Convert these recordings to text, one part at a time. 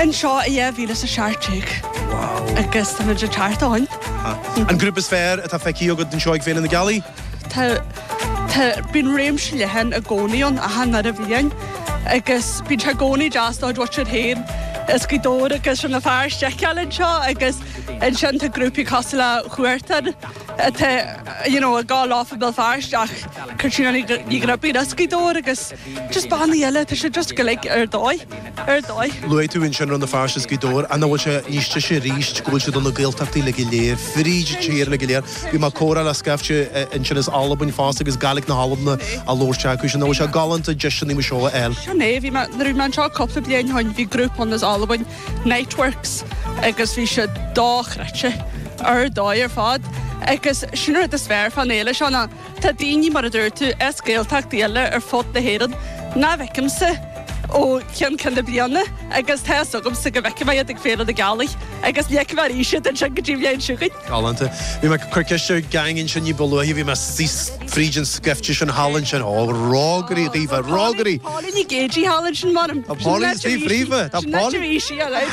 Anseo i 2017 agus tá muid ag teacht ann. An grúpa is fearr atá feicthe agat anseo ag Féile na Gealaí? Tá, tá, bíonn réimse leathan i gcónaí ann, ach nuair a bhíonn, agus bíonn sé i gcónaí deas do mhuintir féin as Gaoth Dobhair agus Rann na Feirste a fheiceáil anseo agus ansin tá grúpaí cosúil le Huartan atá, you know, ag gabháil i mBéal Feirste ach Caitríona Ní Ghribín as Gaoth Dobhair agus Just bannaí eile, tá sé just go like ar dóigh, ar dóigh. Luaigh tú ansin Rann na Feirste is Gaoth Dobhair, an bhfuil sé níos deise arís go bhfuil sé do na Gaeltachtaí uilig go léir, fríd an tír uilig go léir? Bhí mé ag comhrá le scaifte ansin as Albain fosta agus Gaeilge na hAlban á labhairt acu, sin, nach bhfuil sé galánta deiseanna mar seo a fháil? Sin é, bhí mé, nuair a bhí mé anseo cúpla bliain ó shoin, bhí grúpa ann as Albain, Niteworks, agus bhí sé dochreidte, ar dóigh ar fad, agus sin an rud is fearr fán fhéile seo ná, Tá daoine, mar a dúirt tú, as Gaeltachtaí eile ar fud na hÉireann nach bhfeicimse ó cheann ceann na bliana agus tá 'fhios agamsa go bhfeicfidh mé iad ag Féile na Gealaí agus ní fheicfidh mé arís iad ansin go dtí an bhliain seo chugainn. Galánta. Bhí mé ag cur ceiste ar gang ansin ní ba luaithe, bhí mé síos fríd an scaifte sin thall ansin, ó rógairí dhaofa, rógairí! Póilín Nic Géidigh thall ansin, mh'anam. Tá Póilín Nic Géidigh leofa, tá Póilín ansin áit a bhí sí, alright.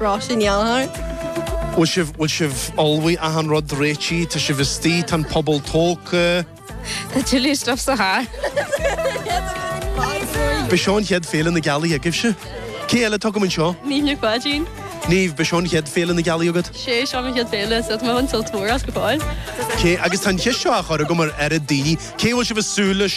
Ráise ndearnadh. Bhfuil sibh, bhfuil sibh ullmhaithe achan rud réitigh? Tá sibh istigh? Tá an puball tógtha? Tá tuilleadh stuif sa charr. Ab é seo an chéad Féile na Gealaí agaibhse. Cé eile tugam anseo? Niamh Nic Pháidín. Niamh, ab é seo an chéad Féile na Gealaí agat? Sé seo mo chéad Féile, so tá mé ag baint sult mór as go fóill. Cé, agus tá an cheist seo á chur agam ar oiread daoine, cé a bhfuil sibh ag súil leis?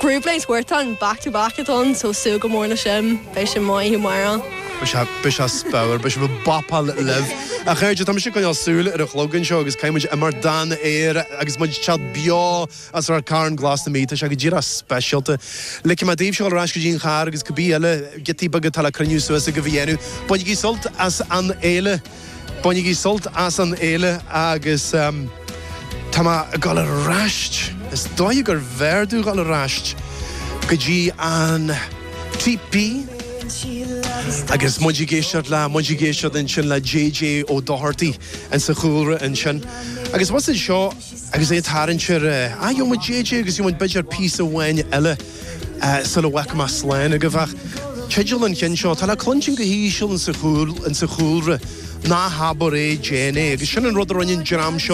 Grooveline is Huartan, back to back atá ann, so súil go mór le sin, beidh sin maith i maireann. Beidh sé, beidh sé spórt, beidh sibh bopáil libh. A chairde, tá mise ag coinneáil súil ar an chlog anseo agus caithfidh muid imeacht don aer agus muid ag teacht beo as Ráth Chairn glas na Mí. Tá sé go díreach speisialta. Ligfidh mé daoibh siúl ar ais go dtí an charr agus cibé eile giotaí beaga atá le cruinniú suas agaibh a dhéanamh. Bainigí sult as an fhéile! Bainigí sult as an fhéile agus tá mé ag dul ar ais, is dóigh gurbh fhearr dom dhul ar ais go dtí an teepee agus muid ag éisteacht le, muid ag éisteacht ansin le JJ Ó Dochartaigh insa chúlra ansin. Agus muid anseo agus é ag tarraingt ar, ah, gheobhaidh muid JJ agus gheobhaidh muid b'fhéidir píosa amháin eile. sula bhfágfaidh mé slán agaibh ach. Teideal an chinn seo, tá le cluinstin go híseal insa chúlra, Ná habair é, déan é, agus sin an rud a rinne an dream seo,